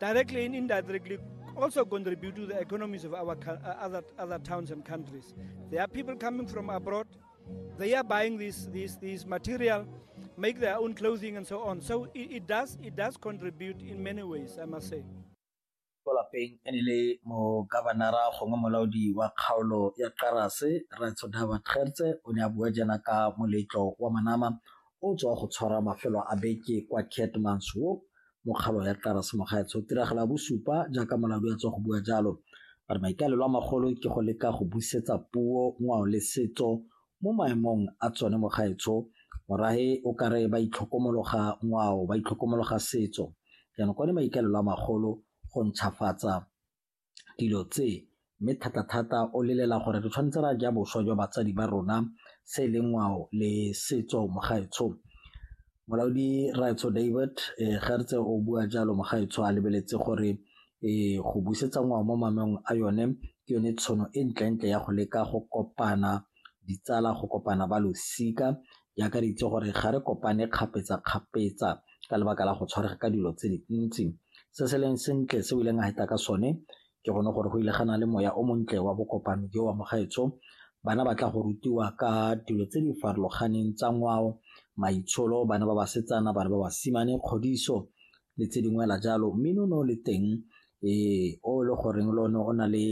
Directly and indirectly also contribute to the economies of our uh, other, other towns and countries. There are people coming from abroad, they are buying this, this, this material, make their own clothing and so on. So it, it, does, it does contribute in many ways, I must say. ko lapeng e ne le mo governora gongwe molaodi wa kgaolo ya karase ratsodaba tgertse o ne a bua jana ka moletlo wa manama o tswa go tshwara mafelo a beke kwa catmanswoop mokgalo ya Tarase Mogaetsho tiragalo ya bosupa jaaka molaodi a tswa go bua jalo a re maikaelelo a magolo ke go leka go busetsa puo ngwao le setso mo maemong a tsone Mogaetsho morahe o ka re ba itlhokomologa ngwao ba itlhokomologa setso jaanong kwane maikaelelo a magolo go ntšhafatsa dilo tse mme thata-thata o lelela gore re tshwanetse re a ja boswa jwa batsadi ba rona se e leng ngwao le setso mo gaetsho. Molaodi Rraetsho David ga re tse o bua jalo mo gaetsho a lebeletse gore go busetsa ngwao mo a yone ke yone tshono e ntle-ntle ya go leka go kopana ditsala go kopana ba losika di akareditse gore ga re kopane kgapetsa-kgapetsa ka lebaka la go tshwarega ka dilo tse dintsi se se leng sentle se o ileng a heta ka sone ke gone gore go ile gana le moya o montle wa bokopano jo wa mogaetsho bana ba tla go rutiwa ka dilo tse di farologaneng tsa ngwao maitsholo bana ba basetsana bana ba basimane kgodiso le tse dingwe la jalo mme no no le teng ee o le goreng le one o na le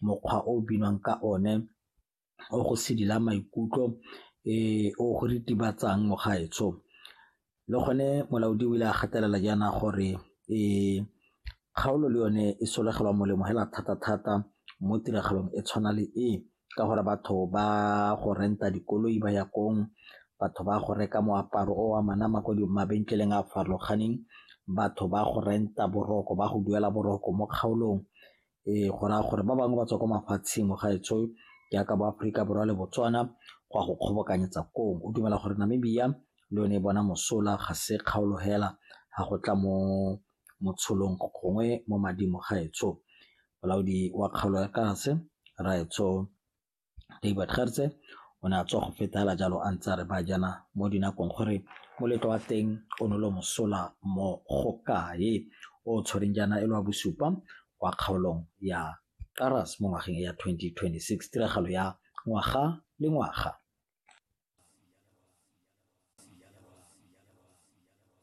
mokgwa o binwang ka one o go sedila maikutlo o go ritibatsang mo gaetsho le gone molaodi o ile a gatelela jaana gore kgaolo le yone e solegelwa molemo fela thata-thata mo tiragalong e tshwana le e ka gore batho ba go rent-a dikoloi ba ya kong, batho ba go reka moaparo o a manama ko mabenkeleng a a farologaneng, batho ba go rent-a boroko ba go duela boroko mo kgaolong Ee, go raya gore ba bangwe ba tswa kwa mafatsheng mo gaetsho jaaka bo Aforika Borwa le Botswana go a go kgobokanyetsa koo. O dumela gore Namibia le yone e bona mosola ga se kgaolo hela ga go tla mo motsholong gongwe mo mading mo gaetsho. Molaodi wa kgaolo ya Kaase, Rraetsho David Gertse o ne a tswa go fetela jalo a ntse a re ba jana mo dinakong gore moletlo wa teng o ne lo mosola mo go kae o tshwereng jaana e le wa bosupa kwa kgaolong ya Karas mo ngwageng ya 2026 tiragalo ya ngwaga le ngwaga.